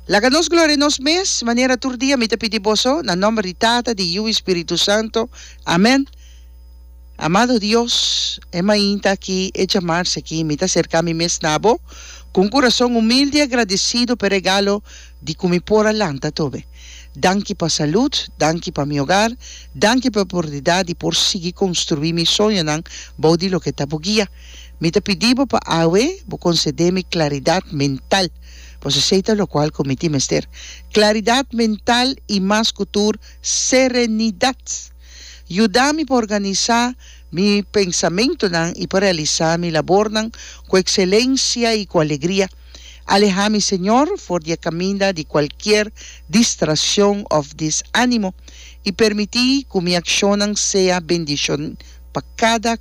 Laga nos gloria nos mes, manera tur dia mi ta pidi boso, na nomber di Tata, di Yu i Spiritu Santo. Amen. Amado Dios, e mainta aki, e djamarsa aki, mi ta serka mi mes na Bo ku un kurason humilde i agradesidu pa e regalo di ku mi por a lanta tobe. Danki pa salud, danki pa mi hogar, danki pa e oportunidat di por sigui konstruí mi soñonan bou di loke ta Bo guia. Mi ta pidi bo pa awe bo concede mi claridad mental, pasobra esey ta locual cu mi tin mester, claridad mental y mas cu tur serenidad. Yuda mi pa organiza mi pensamentonan y pa realiza mi labornan cu excelencia y cu alegria. Aleha mi, Señor, for di e caminda di cualkier distraccion of desanimo y permiti cu mi accionnan sea bendicion pa cada.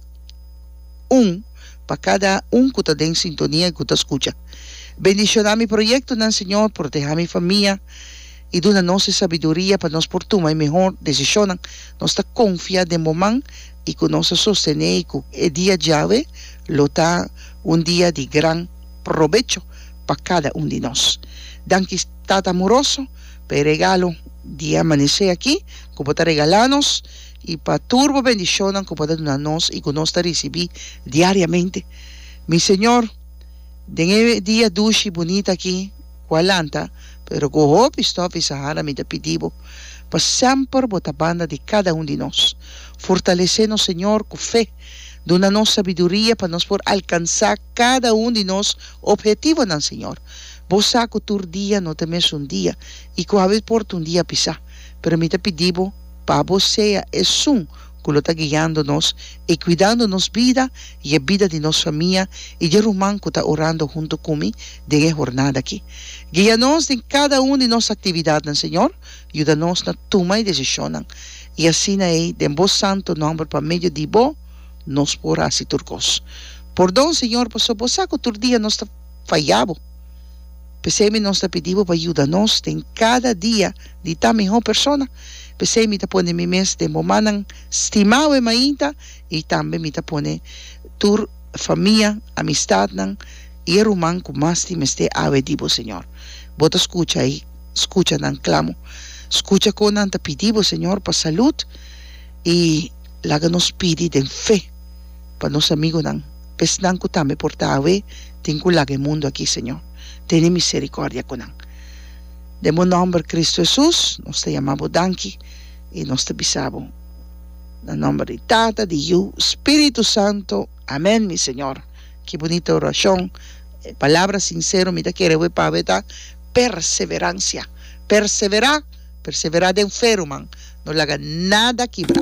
Un pa kada un ku ta den sintonia i ku ta skucha. Bendishoná mi proyektonan, Señor, protehá mi famia i duna nos e sabiduria pa nos por tuma e mehor desishonnan. Nos ta konfiá den bo man i ku nos ta sostené ku e dia djawe lo ta un dia di gran probecho pa kada un di nos. Danki, Tata Amoroso, pa e regalo di e amanesé aki ku bo ta regalá nos. I pa tur bo bendishonnan ku bo ta duna nos i ku nos ta risibí diariamente. Mi Señor, den e dia dushi i bunita aki ku a lanta, pero ku hopi stòf i sahara, mi ta pidi bo pa semper bo ta banda di kada un di nos. Fortalesé nos, Señor, ku fe. Duna nos sabiduria pa nos por alkansá kada un di nos ophetivonan, Señor. Bo sa ku tur dia no ta mesun dia i ku haber por ta un dia pisá, pero mi ta pidi bo, pa Bo sea esun cu lo ta guiando nos y cuidando nos bida y e bida di nos famia y di e ruman cu ta orando hunto cu mi den e hornada aki. Guia nos den cada un di nos actividadnan, Señor, yuda nos na tuma e decisionnan. Y asina ei den Bo santo nomber pa medio di Bo nos por haci tur cos. Pordon, Señor, pasobra Bo sa cu tur dia nos ta faya Bo. P'esei mi nos ta pidi Bo pa yuda nos den cada dia. di ta mihó persona. P'esei mi ta pone mi mes den bomannan stimau e mainta i tambe mi ta pone tur famia, amistatnan i e ruman ku mas tin mester awe di bo, Señor. Bo ta skucha i skucha nan klamo. Skucha kon nan ta pidi bo, Señor, pa salud i laga nos pidi den fe pa nos amigunan, esnan ku tambe por ta awe tin ku laga e mundu akí, Señor. Tene miserikordia ku nan. Den bo nòmber Kristu Hesus nos ta yama bo danki i nos ta bisa bo na nòmber di Tata, di Yu, Spiritu Santu. Amèn, mi Señor. Ki bunita orashon, e palabra sinsero mi ta kere hui pa aweta perseveransia. Perseverá, perseverá den fe ruman, no laga nada kibra.